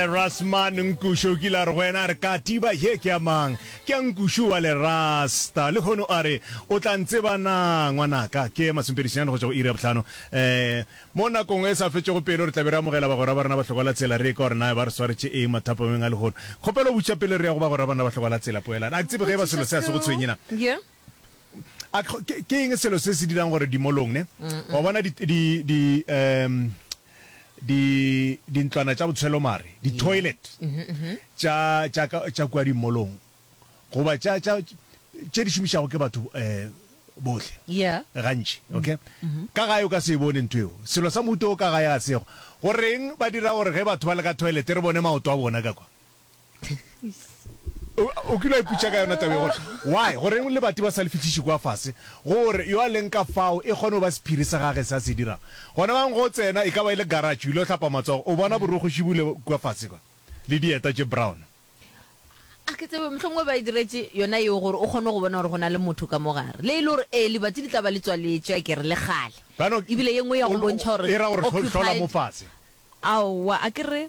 Rasman Nkushu o kile a re go yena, a re, Katiba ye ke ya mang? Ke ya Nkushu wa Lerasta. Lehono a re, O tla ntseba na, ngwanaka? Ke Masompedisenyane go tšwa go iri ya bohlano. Ee, mo nakong e sa fetšego pelo re tla be re amogela bagwera ba rena ba hlokwa-la-tsela, re ye ka gore na ba re swaretše eng mathapameng a lehono. Kgopelo botša pele re ya go bagwera ba rena ba hlokwa-la-tsela, poelano. A ke tsebe ge e ba selo se a se go tshwenye na. A, tlo- ke ke eng selo se se dirang gore dimolong ne wa bona di di di um di dintlwana tša botshelo mare di toilet tša tša ka- tša kua dimolong goba tša tša tše di šomišago ke batho um bohle Yeah. gantši okay ka gae o ka se e bone ntho eo selo sa mohuto o ka gae ga sego goreng ba dira gore ge batho ba le ka toilet re bone maoto a bona ka kwa O kile wa iputša ka yona tabe gore why goreng lebati ba sa le fihliše kwa fase gore yo a leng ka fao e kgone go ba sephiri sa gage se a se dirago gona bang go tsena e ka ba e le garage o ile go hlapa matsogo o bona borokgo šibule kwa fase kwa le dieta tše brown. A ke tsebe mohlomongwe ba e diretše yona yeo gore o kgone go bona gore go na le motho ka mo gare le e le gore ee lebati le tla ba le tswaletše a ke re le kgale ebile ye nngwe ya go bontšha gore occupied aowa a ke re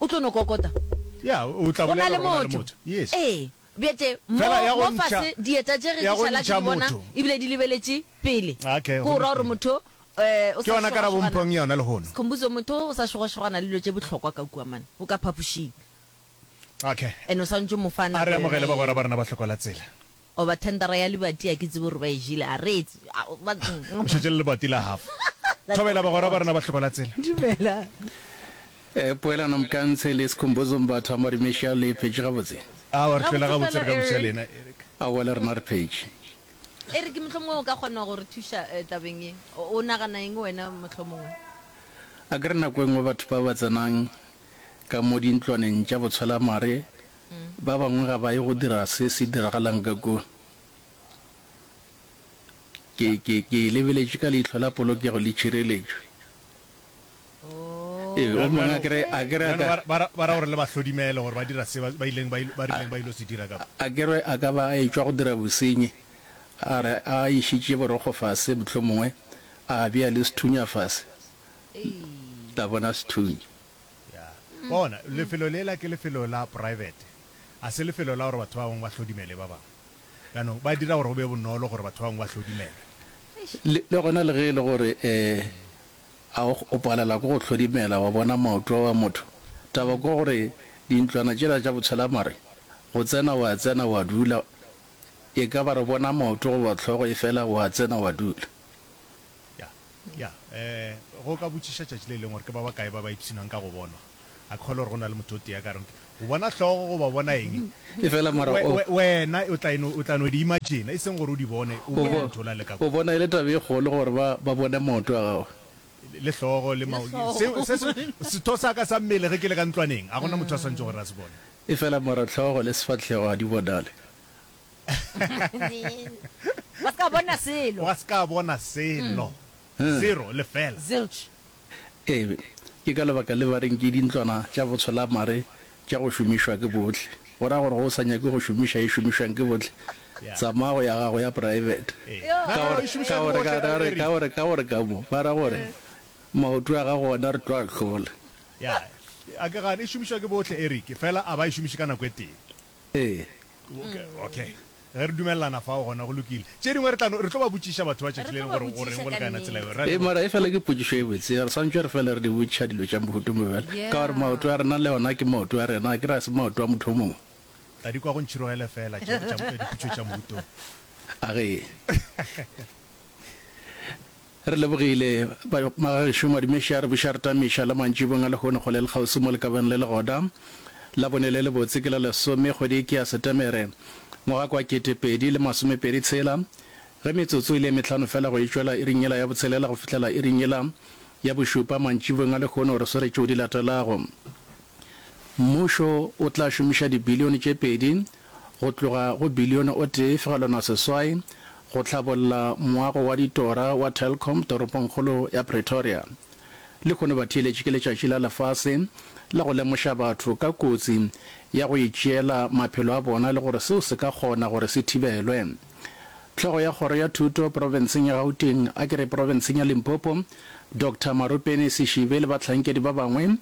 O tlo no kokota. Ya, o tla Go na bolela le gore go na le motho. motho. Yes. Ee, bjete, mo, Fela ya go mo ntšha- fase, dieta tše ge ya di go šala ke ntšha di bona, motho. ebile di lebeletše pele. Okay, Ke go go ra gore lokile. motho, eh, o Ke sa yona karabo šogašogana- mphong yona lehono. Sikhumbuzo, motho o sa šogašogana le dilo tše bohlokwa ka kua, man, o ka phapošing. Okay. And o swanetše o mo fa A nako re yona amogele bagwera eo. ba rena ba hlokola tsela. Goba thendara ya libati, a ke tsebe gore ba e jele, a re etse, a, ba. O šetše le lebati la half. Thobela bagwera ba rena ba hloba la tsela. Dumela. Eh, poelano Mkantshe le Skhumbuzo Mbatha wa Marimesha le e phetše gabotse? Aowa, re hlola gabotse re ka buša le ena, Eric. Aowa, le rena re phetše. Eric, mohlomongwe o ka kgona go re thuša tabeng ye. O nagana eng wena, mohlomongwe? Akere nako e nngwe batho ba ba tsenang ka mo dintlwaneng tša botshwelamare, Ba bangwe ga ba ye go dira se se diragalang ka kua. Ke, ke, ke e lebeletše ka leihlo la polokego le tšhireletšo. Ee, o mongwe a kere, a kere a Bjalo ka, ba, ba ra, ba ra gore le ba hlodimele gore ba dira se ba, ba ileng, ba, il- ba rileng ba il'o se dira ka kua. a kere a ka ba a etšwa go dira bosenyi, a re a išitše borokgo fase, mohlomongwe a bea le sethunya fase. La bona sethunya? Ya. Wa bona, lefelo lela ke lefelo la poraebete. A se lefelo la gore batho ba bangwe ba hlodimele ba bangwe. Jaanong, ba dira gore go be bonolo gore batho ba bangwe ba hlodimele. Le, le gona le ge e le gore, ee, a o, o palelwa ke go hlodimela, wa bona maoto a wa motho. Taba ke gore dintlwana tšela tša botshelamare, go tsena wa tsena wa dula, e ka ba re bona maoto goba hlogo efela wa tsena wa dula. Ya, ya, ee, go ka botšiša tšatši le lengwe gore ke ba bakae ba ba ipshinang ka go bonwa. A ke kgolwe gore go na le motho o tee a ka reng, Go bona hlogo goba bona eng, Efela mara we, o. we, wena o tla eno, o tla no di imagina, e seng gore o di bone, o O bone bo, motho o la le ka o kua. bona e le taba e kgolo gore ba, ba bone maoto a gago. Le hlogo, le mao, hlogo. se, se, se, setho sa ka sa mmele ge ke le ka ntlwaneng, ga go na motho a swanetše gore a se bone. Efela mara hlogo le sefahlego ga di bonale. Wa se ka bona selo. Wa se ka bona selo. Zero, lefela. Zilch. Ee, ke ka lebaka le ba reng ke dintlwana tša botsholamare tša go šomišwa ke bohle. Go ra gore ge o sa nyake go šomiša ye šomišwang ke bohle, tsamaya go ya gago ya praebete. Ka gore, ka gore, ka gore, ka gore, ka gore ka mo, ba ra gore, Maoto a gago ona re tlo a hlola. Ya, a ke gane e šomišwa ke bohle, Eric, fela a ba e šomiše ka nako e tee. Ee. Okay, okay. Ge re dumelelana fao, gona go lokile. Tše dingwe re tla no, re tlo ba botšiša batho ba tšatši le lengwe gore o reng go le ka yona tsela yeo. Ra Ee, leboga. mara e fela ke potšišo e botse. Re swantšwe re fele re di botšiša dilo tša mohuto mo bjale, ka gore maoto a rena le ona ke maoto a rena, akere a se maoto a motho o mongwe. Tla di kwa go ntšhirogele fela tše tša diputso tša mohutong. A ge. Re lebogile, ba, Magagešo Madimeša, re buša re tamiša la mantšibong a lehono go le le kgauswi mo lekabeng le legoda. Labone le lebotse ke la lesome, kgwedi ke ya Setemere, ngwaga ke wa kete pedi le masomepedi tshela. Ge metsotso e le e mehlano fela go e tšwela iring yela ya botshelela go fihlela iring yela ya bošupa mantšibong a lehono, re swere tšeo di latelago. Mmušo o tla šomiša dibilione tše pedi go tloga go bilione o tee fegelwana seswai go hlabolla moago wa ditora wa Telkom toropongkgolo ya Pretoria. Lehono batheeletši ke letšatši la lefase la go lemoša batho ka kotsi ya go itšeela maphelo a bona le gore seo se ka kgona gore se thibelwe. Hlogo ya kgoro ya thuto profenseng ya Gauteng a ke re profenseng ya Limpopo, Doctor Marupeni Sishibe le bahlankedi ba bangwe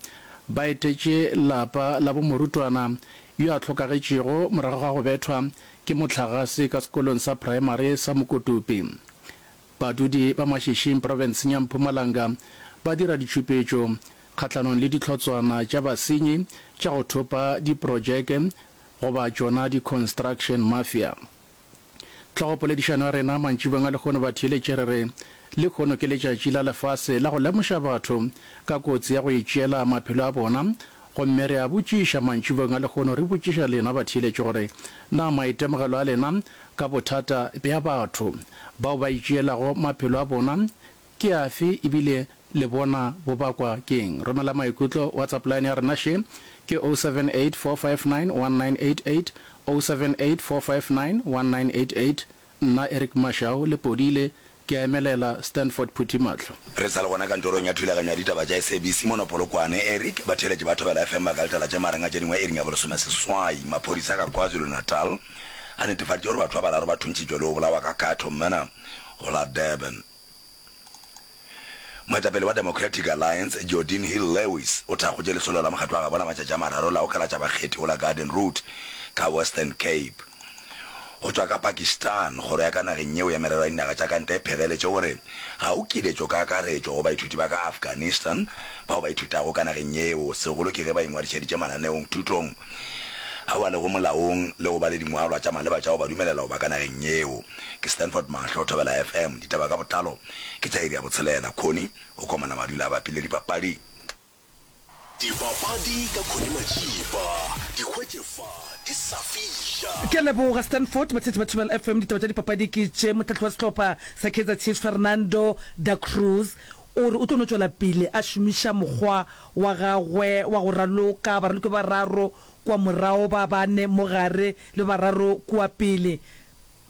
ba etetše lapa la bo morutwana yo a hlokagetšego morago ga go bethwa ke mohlagase ka sekolong sa praemari sa Mokotopi. Badudi ba Mashishing profenseng ya Mpumalanga ba dira ditšhupetšo kgahlanong le dihlotswana tša basenyi tša go thopa diprotšeke goba tšona di-construction mafia. Tlhogopoledišano ya rena mantšibeng a lehono ba theeletše re re, Lehono ke letšatši la lefase la go lemoša batho ka kotsi ya go itšeela maphelo a bona. Gomme re a botšiša mantšibeng a lehono, re botšiša lena batheeletši gore, Na maitemogelo a lena ka bothata bja batho bao ba itšeelago maphelo a bona Ke afe, e bile le bona bo bakwa ke'ng? Romela maikutlo WhatsApp line ya rena še ke 0784591988, 0784591988. Nna Eric Mashau le Podile ke a emelela Stanford Phuthi mahlo. Re sa le gona kantorong ya thulaganyo ya ditaba tša SABC mono Polokwane, Eric, batheeletši ba Thobela FM ba ka letela tše marang a tše dingwe iring ya bolesomeseswai. Maphodisa ka KwaZulu-Natal a netefaditše gore batho ba bararo ba thuntšitšwe le go bolawa ka katho mona go la Durban. Moetapele wa Democratic Alliance, Geordin Hill-Lewis, o thakgotše lesolo la mokgatlo wa gabona matšatši a mararo la go kalatša bakgethi go la Garden Route ka Western Cape. Go tšwa ka Pakistan, kgoro ya ka nageng yeo ya merero ya dinaga tša ka ntle e pheleletše gore ga o kiletšo ka akaretšo go baithuti ba ka Afghanistan bao ba ithutago ka nageng yeo, segolo ke ge ba ingwadišeditše mananeong, thutong ao a lego molaong le go ba le dingwalwa tša maleba tša go ba dumelela go ba ka nageng yeo. Ke Stanford Mahlo, Thobela FM, Ditaba ka Botlalo, ke tša iri ya botshelela. Khoni o komana madula a bapile dipapadi. Dipapadi ka Khoni Matšipa, di hwetše fa di sa fiša. Ke a leboga Stanford Mathithi ba Thobela FM. Ditaba tša dipapadi ke tše, mohlahli wa sehlopha sa Kaizer Chiefs Fernando Da Cruz o re o tlo no tšwela pele a šomiša mokgwa wa gagwe wa go raloka baraloki ba bararo kua morago, ba bane mo gare le ba bararo kua pele.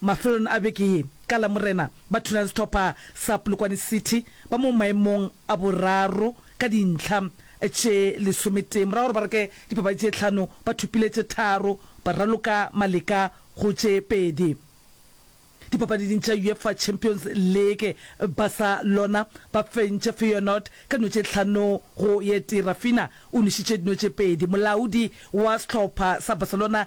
Mafelelong a beke ye, ka Lamorena, ba thulane sehlopha sa Polokwane City ba mo maemong a boraro ka dintlha tše lesometee morago gore ba reke dipapadi tše tlhano ba thopile tše tharo ba raloka maleka go tše pedi dipapadiding tša UEFA Champions League. Barcelona ba fentše Feyenoord ka dino tše tlhano go ye tee, Raphinha o nwešitše dino tše pedi. Molaodi wa sehlopha sa Barcelona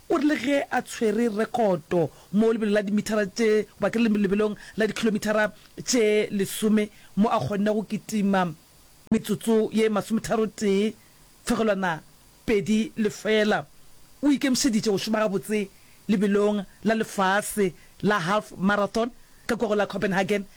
O re le ge a tshwere rekoto mo lebelo la dimithara tše ba ke le lebelong la dikhilomithara tše lesome mo a kgonne go kitima metsotso ye masometharotee fegelwana pedi lefela, o ikemišeditše go šoma gabotse lebelong la lefase la half marathon ka kogong la Copenhagen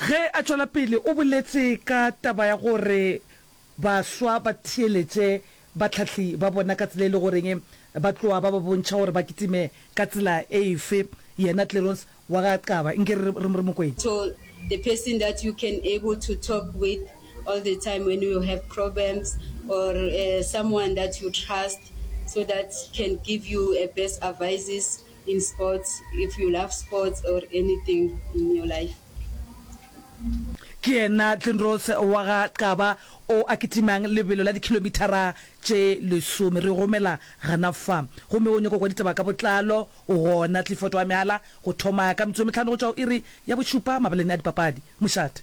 Ge a tšwela pele o boletše ka taba ya gore baswa ba theeletše bahlahli ba bona ka tsela e lego goreng ba tloga ba ba bontšha gore ba kitime ka tsela efe. Yena Clerons wa ga Qaba nke re re mo kwetše. So the person that you can able to talk with all the time when you have problems or someone that you trust so that can give you a best advices in sports if you love sports or anything in your life. Ke yena Tlindrose wa ga Qaba o a kitimang lebelo la dikhilomithara tše lesome. Re o romela gana fa. Gomme o nyoko kwa ditaba ka botlalo, o gona. Clifford wa mehala go thoma ka metsotso e mehlano go tšwa go iri ya bošupa mabaleng a dipapadi. Mošate.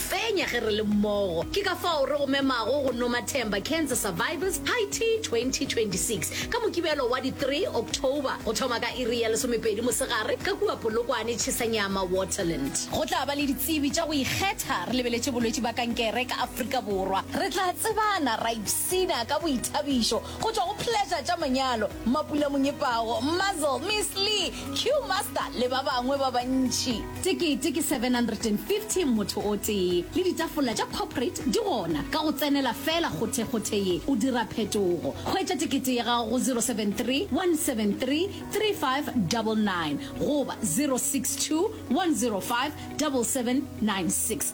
Fenya ge re le mmogo. Ke ka fao re go memago go Nomathemba Cancer Survivors High Tea 2026 ka Mokibelo wa di 3 October go thoma ka iri ya lesomepedi mosegare ka kua Polokwane, Tšhesanyama, Waterland. Go tla ba le ditsebi tša go ikgetha. Re lebeletše bolwetši ba kankere ka Afrika Borwa. Re tla tsebana ra ipshina ka boithabišo go tšwa go Pleasure tša Manyalo, Mapula Monyepago, Muzzle, Miss Lee, Q-Master le ba bangwe ba bantši. Tekete ke 750 motho o tee le ditafola tša corporate di gona. Ka go tsenela feela kgothekgothe ye, o dira phetogo. Hwetša tekete ya gago go 073-173-3599 goba 062-105-7796.